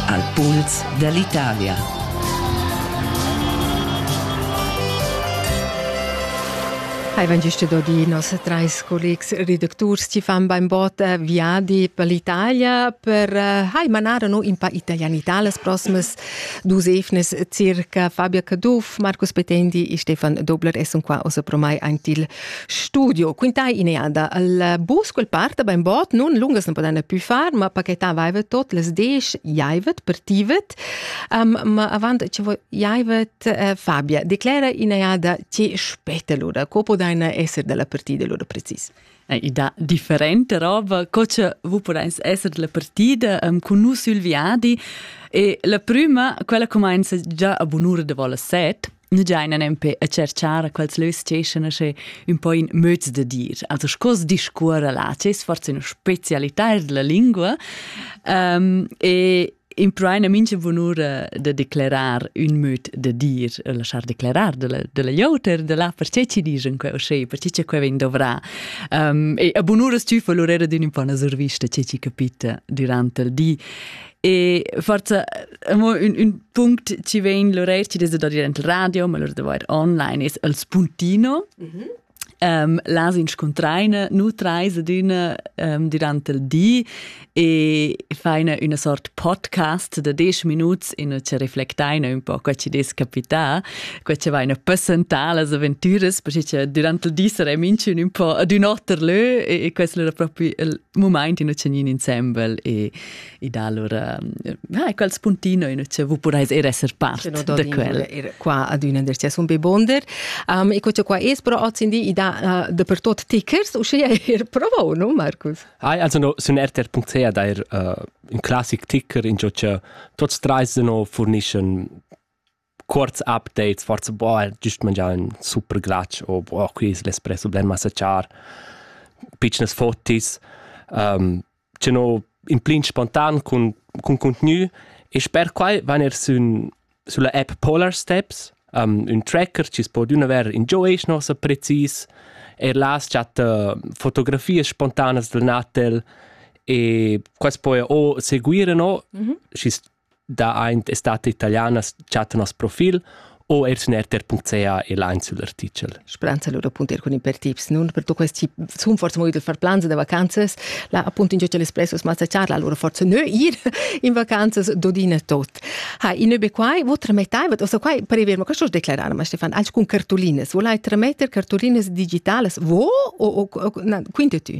Al puls dall'Italia. Hai vegn gist dodi nos treis collegs redacturs ti fan beinbot eh, viadi per l'Italia per eh, hai manar no in pa italianità las proximas dus efnes circa Fabia Caduff, Marcus Petendi e Stefan Dobler esson qua oso promai antil Studio, quintai ineada. Il bus quel parta ben bot, nun lungas non podana più far, ma paketavaivet tot les desch jaivet, partivet, um, ma avant ce jaivet uh, Fabia declera ineada ce spetta lura, co podaina esser della partida lura precis. Eh, ida differente roba, co ce vu podains esser della partida um, con nus sul viadi e la prima, quella comenza già a bunura de vola set, nu giaina nempe a cerchar quels lös steschan sche ün po in möds da dir. Also sco discuorra là, c'es forse üna specialità della lingua um, e impruaina mincha bunura da declerar ün möd da dir e lasciar declerar della, della ioter da là perché ci dischan queu schi, perché che queu vegn dovrà. Um, e a bunuras tü fa l'urera d'ün un po 'na survista che ci capita durante il di. E forza amo ün, ün punct ci vegn Lorel ci dese da dir ent radio, ma lor de vair online es el spuntino. Mm -hmm. um, las inscuntraine nu traise d'üna um, durante il di e faina üna sort podcast da 10 minuts in e ci reflectaina un po' qua ci des capità, qua ci vaina passentà las avventuras, perché durante il di sarei minchun un po' ad un otter lö e, e questo era proprio il, mumaint in tschegnin insembel e ed allora ah, quels puntino in che vu purais er esser part no, da quel er qua ad una der tia be bonder um, e co qua es però ozindi ida uh, de per tot tickers u sche er provau no Marcus Ai also no sun rtr.ca da er uh, un classic ticker in jo che tots treis no furnischen Cuorts updates, forsa boh, güst mangià ün super glatsch o boh, qui es l'espresso blen massa char, pitschnas fotis. Tenor implint spontan cun cun cuntgnü e sper quai van eir sün sulla app Polar Steps ün tracker chi's po adüna verer ingio ais nossa precis. Eir là as chatta fotografias spontanas dal Natel e quaist po eir o seguire no, schi's da aint estate italianas chattan nos profil o eir sün rtr.ca el aint sül artichel. Speranza lura appunto er cun in per tips, nun per tu questi sun forse movi del far plans da vacanzas, la appunto in Social Espresso smazza charla, allora forse nö ir in vacanzas dodina tot. Ha, in be quai, vo tramettai, wat also quai prever, ma questo declarare, ma Stefan, anche con cartolinas, volai trametter cartolinas digitales, vo o, o, o quinte tu?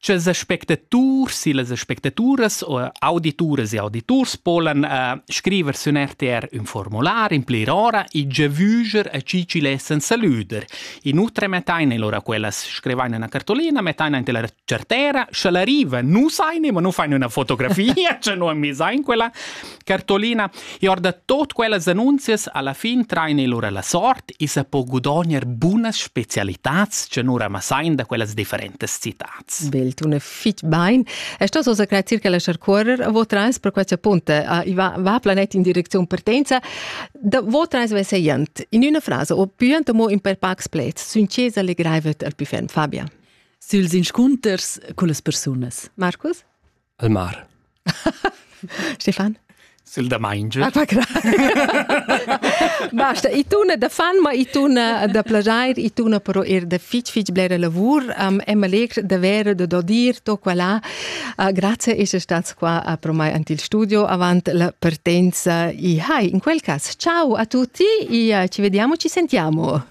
Tschels aspectaturs e las aspectaturas o audituras e auditurs polan uh, scriver sün RTR ün formular in plir ora e giavüger a chi chi lessan salüder. Inoltre mettain lora quellas scrivain üna cartolina, mettain ante la certera, scha l'arriva nu saine, ma nu fain üna fotografia, cha nu am misain quella, Cartolina, e or da tot quellas annunzias alla fin traina il ura la sort e sa po gudogner bunas specialitats che nura massain da quellas differentas citats. Bel, tu ne fitch bain. E sto so grazie che la sharcuorer vo trans per questa punta va, va planet in direczione partenza da vo trans veseiant in una frase o più mo in per pax plets sincesa legreivet al più ferm Fabia. Süls inscunters cullas persunas. Marcus? al mar. Stefan? Sil da maingio. Ah, Basta, i tuna da fan, ma i tuna da plagiar, i tuna però er da fitg fitg blera lavur. Um, è malegr davvero da dir to qua là. Uh, grazie essere stato qua a pro mai ante il studio avant la partenza. I hai, in quel caso, ciao a tutti e uh, ci vediamo, ci sentiamo.